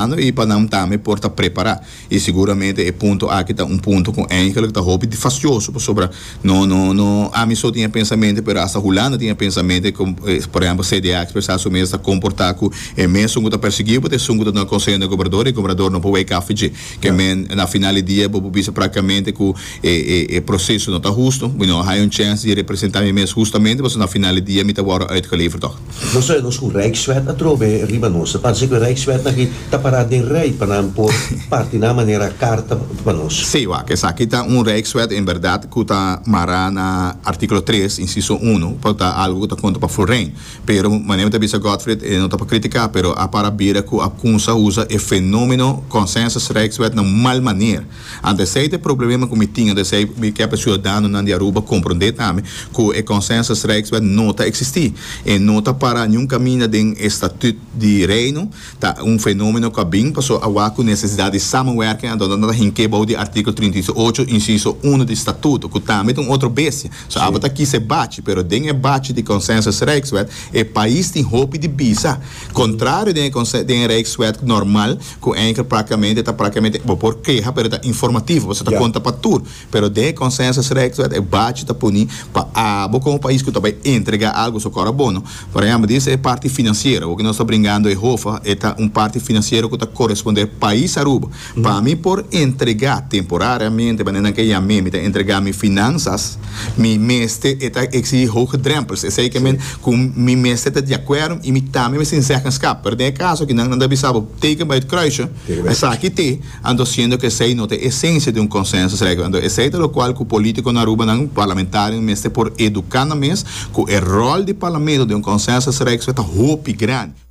Ando i pa nan tambe por ta prepará. I seguramente e punto aki ta un punto ku eindelijk ta hopi difasjoso pasobra no no no ami so tin e pensamente pero asta Hulanda tin e pensamente ku por ehempel CDA a ekspresá su mes ta komportá ku e mesun ku ta persiguiu bo ta esun ku ta duna konseho na e gobernador i e gobernador no por wak af dje ke men na final di dia bo por bisa praktikamente ku e e e proseso no ta hustu mi no a haña un chèns di representá mi mes hustamente pasobra na final di dia mi ta wòrdu uitgeleverd tòg. Nos ta oe nos cu Rijkswet a trove riba nos. Ta parse cu Rijkswet aki ta para den rij pa nan por parti nan a manera carta pa nos. Sí, wak, esaki ta un Rijkswet en berdad cu ta mara na articulo tres, inciso uno, pa ta algo cu ta conta pa Florijn. Pero, manera mi ta bisa Godfried, e no ta pa critica, pero a para bira cu a cunsa usa e fenomeno Consensus Rijkswet na un mal maner. Ante esei ta e problema ku mi tin, ante esei mi ke pa e siudadanonan di Aruba komprondé tambe ku e Consensus Rijkswet no ta eksistí. E no ta pará niun kaminda den e Statüt di Reino. Ta un fenómeno ku a bin pasó awa ku nesesidat di samenwerking anto nan ta hink'é bou di artíkulo trinta i ocho, insiso uno di Statuto, ku tambe ta un otro bestia. So abo ta kisa e bachi, pero den e bachi di Consensus Rijkswet e pais tin hopi di bisa, kontrario den e den e Rijkswet normal. cu Anchor practicamente ta practicamente bo por keha pero ta informativo pasobra ta conta pa tur pero den e consensus rex wet e bachi ta puni pa abo como pais cu ta bay entrega algo su cor a bono por ejemplo di ese parti financiero awo cu nos ta bringando e hofa e ta un parti financiero cu ta coresponder pais Aruba pa mi por entrega temporariamente manera nan ke yam'e mi ta entrega mi finanzas. Mi mester e ta exigi hoge drempels, esei ke men ku mi mester ta di akuerdo i mi tambe mester tin zeggenskap. Pero den e kaso aki nan, nan ta bisa bo, teken bai ut kruisje, esaki te, anto siendo ku esei no ta e esensia di un konsènsusregel. Anto esei ta lokual ku polítiko na Arubanan, parlamentarionan mester por eduká nan mes ku e ròl di parlamento den un konsènsusregel ta hopi grandi.